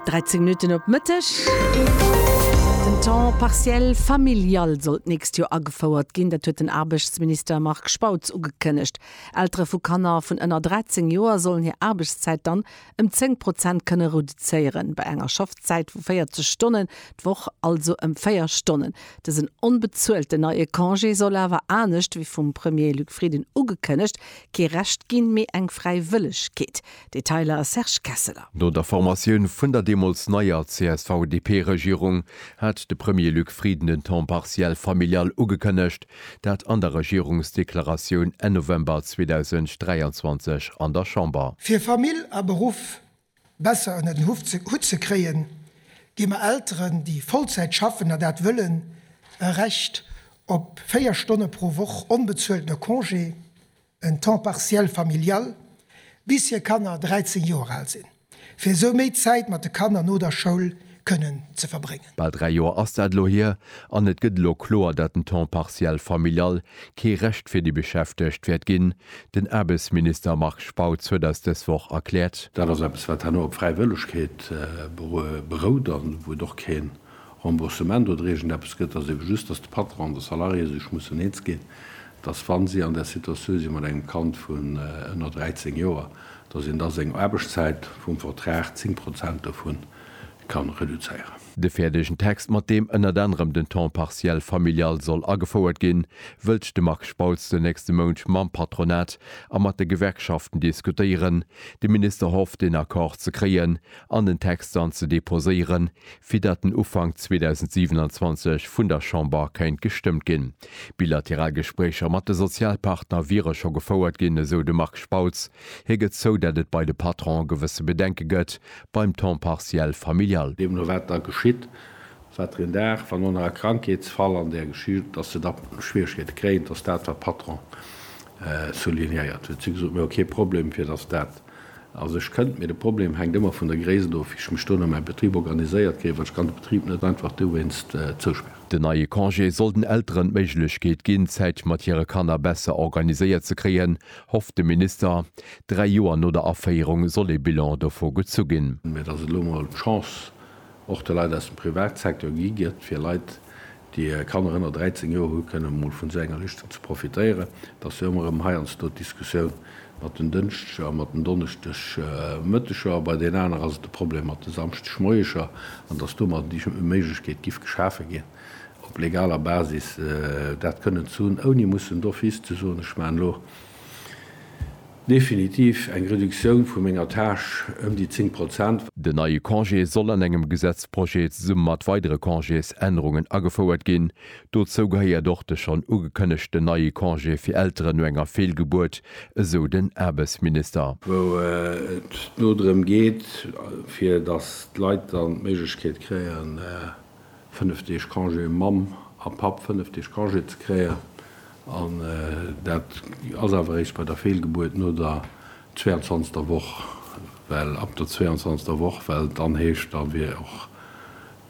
13 Minutten op Mëtteg. Den Temps partiel familial soll d'nächst Joer agefouert ginn. Dat huet den Aarbechtsminister Marc Spautz ugekënnegt. Eltere vu Kanner vun ënner 13 Joer sollen hir Aarbechtszäit dann ëm 10 Prozent kënne reduzéieren. Bei enger Schaffzäit vu 40 Stonnen d'Woch, also ëm véier Stonnen. Dësen onbezuelten neie Congé soll awer, anescht wéi vum Premier Luc Frieden ugekënnegt, kee Recht ginn, mee eng Fräiwëllegkeet. Detailer, Serge Kesseler. No der Formatioun vun der deemools neier CSV-DP-Regierung hat de Premier Luc Frieden den Temps partiel familial ugekënnegt, dat an der Regierungsdeklaratioun Enn November 2023 an der Chamber. Fir Famill a Beruff besser ënner den Hutt ze kréien, gi mer Elteren, déi Vollzäit schaffen a dat wëllen, e Recht op 4 Stonne pro Woch onbezueltene Congé, en temps partiel familial, bis hir Kanner 13 Joer al sinn, fir esou méi Zäit mat de Kanner no der Schoul kënnen ze verbréngen. Bal dräi Joer ass dat elo hier, an et gëtt elo kloer, datt den temps partiel familial kee Recht fir déi Beschäftegt wäert ginn. Den Aarbechtsminister Marc Spautz huet eis dës Woch erkläert, Dat ass eppes, wat herno op Fräiwëllegkeet berout, an wou et och kee Remboursement oder iergend eppes gëtt, ass ebe just, dass de Patron an de Salarié sech mussen eens ginn, dass, wa si an där Situatioun si mat engem Kand vun ënner 13 Joer, dass een da seng Aarbechtszäit vum Vertrag, 10 Prozent dovun, ka reduzéieren. De fäerdegen Text, mat deem ënnert anerem den Temps partiel familial soll agefouert ginn, wëllt de Marc Spautz den nächste Mount mam Patronat a mat de Gewerkschaften diskutéieren. De Minister hofft, een Accord ze kréien an den Text dann ze deposéieren, fir datt en Ufank 2027 vun der Chamber kéint gestëmmt ginn. Bilateral Gespréicher mat de Sozialpartner wiere scho gefouert ginn, esou de Marc Spautz. Hie gëtt zou, datt et bei de Patronen gewësse Bedenke gëtt beim Temps partiel familial. Deemno wat da geschitt, wat der een Dag, wann no nach e Krankheetsfall an där Geschicht, datt se da Schwieregkeete kréien, datt dat wat d'Patronen soulignéiert hunn. Si hu gesot, mir hu kee Problem, fir datt dat Also ech kënnt mir, de Problem hänkt ëmmer vun der Gréisst of, wéi ech mech do no mäi Betrib organiséiert kréien, well ech kann de Betrib net einfach dowéinst zousperren. Den neie Congé soll den Elteren d'Méiglechkeet ginn, d'Zäit mat hire Kanner besser organiséiert ze kréien, hofft de Minister. Dräi Joer no der Aféierung soll ee Bilan dovu gezu ginn. Mee et ass elo mol d'Chance och de Leit aus dem Privatsecteur gi gëtt, fir Leit, déi Kanner ënner 13 Joer hunn, kënnen emol vun esou enger Lëschten ze profitéieren. Et ass jo ëmmer erëm heiansdo d'Diskussioun mat den Dënschdeger a mat den Donneschdegmëtteger, a bei den aner ass et de Problem mat de Samschdegmoieger, an dass domadder déi Méiglechkeet giff geschafe ginn, op legaler Basis dat kënnen ze hunn, ouni mussen d'office ze soen, ech maachen elo. Definitiv eng Reduktioun vu menger Tâche ëm déi 10 Prozent. Den neie Congé soll an engem Gesetzprojet zesumme mat weidere Congésännerungen agefouert ginn. Dozou gehéiert och de schonn ugekënnegten neie Congé fir Elteren no enger Feelgebuert, esou den Aarbechtsminister. wou et no drëm geet, fir datt d'Leit dann d'Méiglechkeet kréien, fënnef Deeg Congé, um Mamm a Papp fënnef Deeg Congé ze kréie, an dat ass awer eréischt bei der Feelgebuert no der zweiundzwanzegster Woch, well ab der zweiundzwanzegster Woch, well et dann heescht, da wier och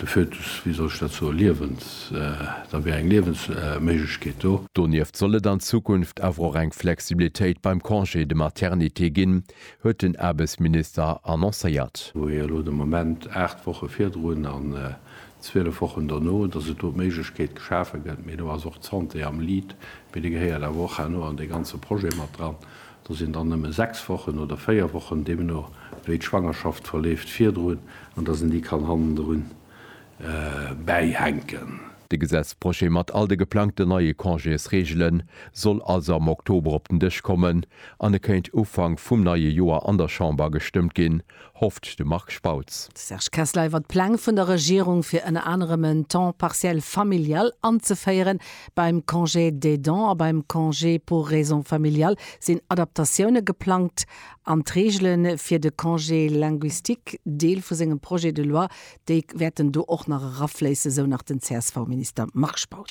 de Fötus, wéi soll ech dat soen, liewens-, da wier eng Liewensméiglechkeet do. Donieft soll et an Zukunft awer och eng Flexibilitéit beim Congé de maternité ginn, huet den Aarbechtsminister annoncéiert. Wou ee elo de Moment 8 Woche virdrun an 12 Wochen dono, dass et do d'Méiglechkeet geschafe gëtt, mee do ass och d'Santé am Lead, mee déi gehéiert awer och herno an dee ganze Projet mat dran, do sinn dann nëmme 6 Wochen oder 4 Wochen, deemno wéi d'Schwangerschaft verleeft, virdrun, an dass een déi kann hannendrun bäihänken. De Gesetzprojet mat all de geplangten neie Congésreegele soll also am Oktober op den Dësch kommen an e kéint Ufank vum neie Joer an der Chamber gestëmmt ginn, hofft de Marc Spautz. De Serge Kessler iwwer d'Pläng vun der Regierung, fir ënner anerem en Temps partiel familial anzeféieren. Beim Congé d'aidant a beim Congé pour raisons familiales sinn Adaptatioune geplangt an d'Reegele fir de Congé linguistique Deel vu sengem Projet de loi, Déi wäerten do och nach erafléissen, esou nach den CSV-Minister Marc Spautz.